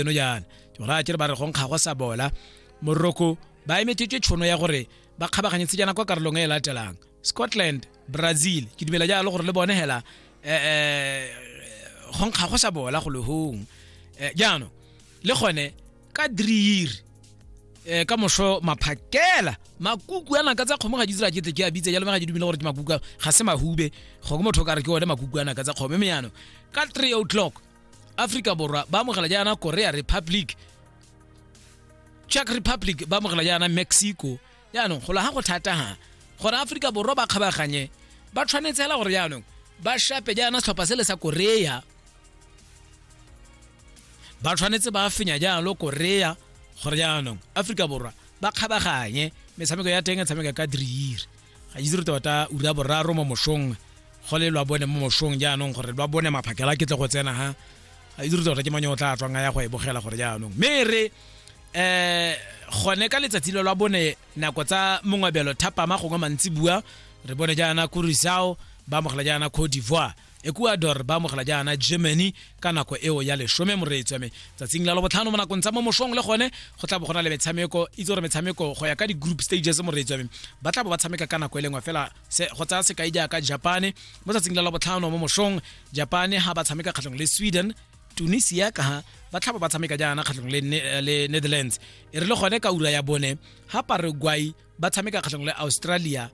eno jaana ke gore a kere ba re go nkga go sa bola moroko ba emetšetswe tšhono ya gore ba kgabaganyetse jaana kwa karolong e e latelang scotland brazil ke dumela jalo gore le bone hela um go nkga go sa bola go lehong eh, jaanong le gone ka dreir um ka moso maphakela makuku a naka tsa kgomo ga di tsira kete ke a bitse jalo ga di dumele gore ke makuku ga se mahube go ke motho ka re ke one makuku a naka tsa kgomo mme jaanong ka three o'clock aforika borwa ba amogela jaana korea republic czech republic ba amogela jaana mexico jaanong go laga go thataga gore aforika borwa ba kgabaganye ba tshwanetse fela gore jaanong ba shape jaana setlhopha se le sa korea ba tshwanetse ba fenya jalo korea gore jaanong aforika borwa ba kgabaganye metshameko ya teng e tshameka ka driire ga itse re tota ura boraro mo mosong go le lwa bone mo mosong jaanong gore lwa bone maphakela ke tle go tsena ha ga itse re tota ke manyo o tla tswang a ya go e bogela gore jaanong mme re um gone ka letsatsi lo lwa bone nako tsa mongwabelo thapama gongwe mantsi bua re bone jaana kurisao ba amogela jaana cote d'ivoire ecuador ba amogela jaana germany ka nako eo ya lesome moreetsi wa me tsatsing la lobotlhano mo nakong tsa mo mosong le gone go tla bo go na le metshameko itse gore metshameko go ya ka di-group stages moreetsi wa me ba tla bo ba tshameka ka nako e lengwe fela go tsaya sekai jaaka japane mo tsatsing la labotlhano mo mosong japane ha ba tshameka kgatlhong le sweden tunisia ka ha ba tlhaba ba tshameka jaana kgatlhong le eh, netherlands e re le gone ka ura ya bone ha paraguay ba tshameka kgatlhong le australia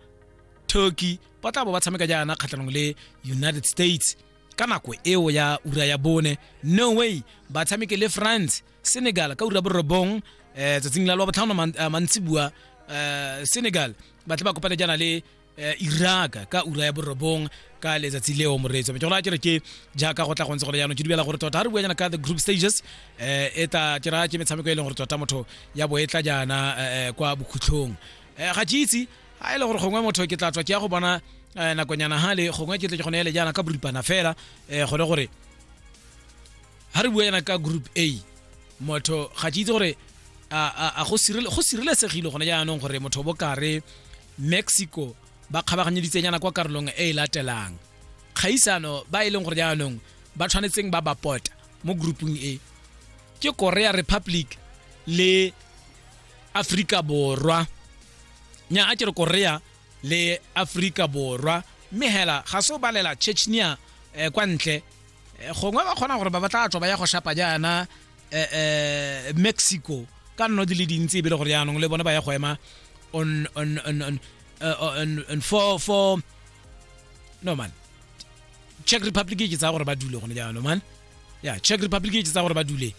turkey ba tla bo ba tshameka jaana kgatlhanong le united states ka nako eo ya ura ya bone norway ba tshameke le france senegal ka ura borobong um eh, tsatsing la lwa botlhano eh, mantsi bua um eh, senegal ba tle ba kopane jaana le Eh, iraka ka ura ya borobong ka letsatsi leo moreetso ke gona kere ke jaaka go tla go ntse go le jaanong ke dumela gore tota ga re bua jaana ka the group stages um e ta ke raya ke metshameko e leng gore tota motho ya bo e tla jaana eh, kwa bokhutlhong ga ke itse a e le gore gongwe motho ke tla tswa ke ya go bona um nakonyana gale gongwe ke tle ke gone ele jaana ka boripana fela um gone gore ga re bua yana ka group a motho ga ke itse gore a go sireletsegile gone jaanong gore motho bo kare mexico ba kgabaganyeditsenyana kwa karolong e e latelang kgaisano ba e leng gore jaanong ba tshwanetseng ba ba pota mo groupung e ke korea republic le aforika borwa nya a ke re korea le aforika borwa mme hela ga se o balela chechnia um kwa ntle eh, gongwe ba kgona gore ba batla tswa ba ya go shapa jaana um mexico ka nno di le dintsi ebile gore jaanong le bone ba ya go ema on on on on on, on for for no man czech republic ke tsa gore ba dule gone jaanong man ya yeah, czech republic ke tsa gore ba dule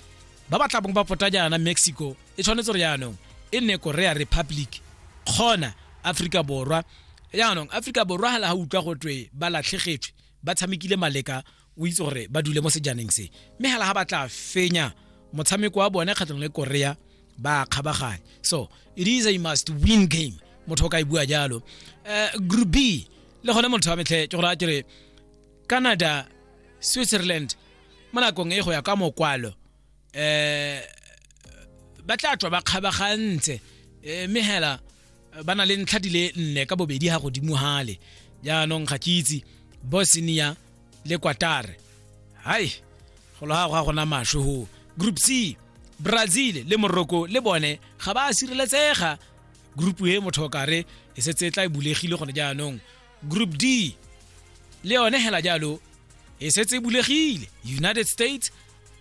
ba ba tlabong ba pota jaana mexico e tshwanetse re yaanong e nne korea republic kgona aforika borwa yaanong aforika borwa ga la ga utlwa go twe ba latlhegetswe ba tshamekile maleka o itse gore ba dule mo sejaneng se mme ga la ga ba tla fenya motshameko wa bone kgatlhong le korea ba kgabaganya so it is a must win game motho o ka e bua jalo um eh, group b le gone motho wa metlhe ke gore a kere canada switzerland mo nakong e go ya ka mokwalo eh ba tla tswa ba kgabagantse eh, mme hela eh, ba na le ntlha di le nne ka bobedi ga godimo gale jaanong ga ke itse bosnia le kwatare hai go loga go ga gona maswe go group c brazil le morocco le bone ga ba sireletsega group e motho o kare e setse e tla e bulegile gone jaanong group d le yone hela jalo e setse e bulegile united states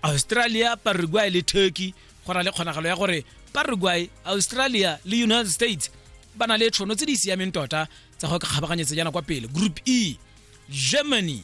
australia paraguay le turkey go na le kgonagalo ya gore paraguay australia le united states ba na le tshono tse di siameng tota tsa go kgabaganyetsa jana kwa pele group e germany